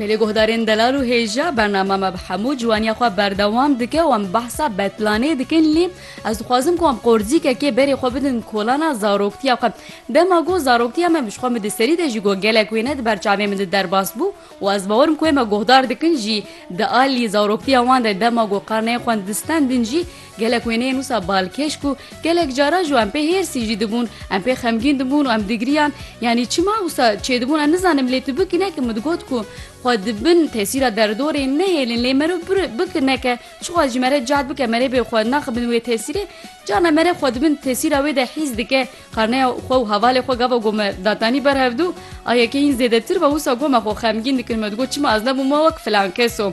Belê guhdarên delal û hêja bernama me bi hemû ciwaniya xwe berdewam dike û em behsa betlanê dikin lê ez dixwazim ku em qorzîkekê berê xwe bidin kolana zaroktiya xwe. Dema got zaroktiya me ji xwe min di serî de jî got gelek wêne di ber çavên min de derbas bû û ez bawer im ku wê me guhdar dikin jî di alî zaroktiya wan de dema got qarneyê xwe distendin jî Gelek wêneyên wisa balkêş ku gelek caran ji wan pê hêrsî jî dibûn, em pê xemgîn dibûn û em digiriyan, yanî çima wisa çêdibûn em nizanim lê tu bikî neke min digot ku xwe di bin tesîra derdorê nehêlin lê merov bikî neke çixwaz jî mere cad bike merê bê xwe naxibin wê tesîrê carna mere xwe di bin tesîra wê de hîs dike qarneya xwe û hevalê xwe gava ku me datanî ber hevdû a yekeyîn zêdetir be wisa ku me xwe xemgîn dikin me digot çima ez nebûm wek filan keso.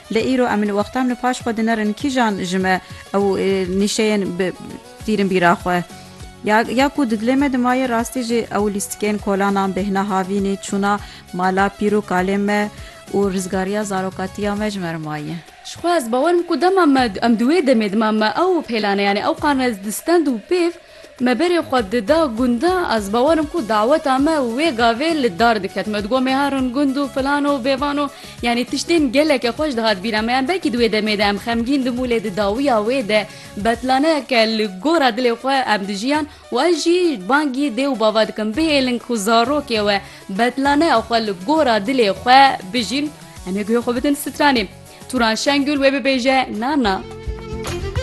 Lê îro em li wexta min û paş xwe dinerin kîjan ji me ew nîşeyên bi tîrin bîra xwe. Ya ya ku di dilê me di mayê rastî jî ew lîstikên kolanan bêhna havînî, çûna mala pîr û kalên me û rizgariya zarokatiya me ji me re maye. Ji xwe ez bawer im ku dema me em di wê demê dima me ew pêlane yanî ew qan me di stend û pêv Me berê xwe dida gunde, ez bawer im ku daweta me wê gavê li dar diket. Me digot me herin gund û filan û bêvan û yanî tiştên gelekî xweş dihat bîra me. Yan belkî di wê demê de em xemgîn dibû lê di dawiya wê de betlaneyeke li gora dilê xwe em dijiyan û ez jî bangî dê û bava dikim bihêlin ku zarokê we betlaneya xwe li gora dilê xwe bijîn. Em ê guhê xwe bidin stranê. Turan Şengul wê bibêje, Na na.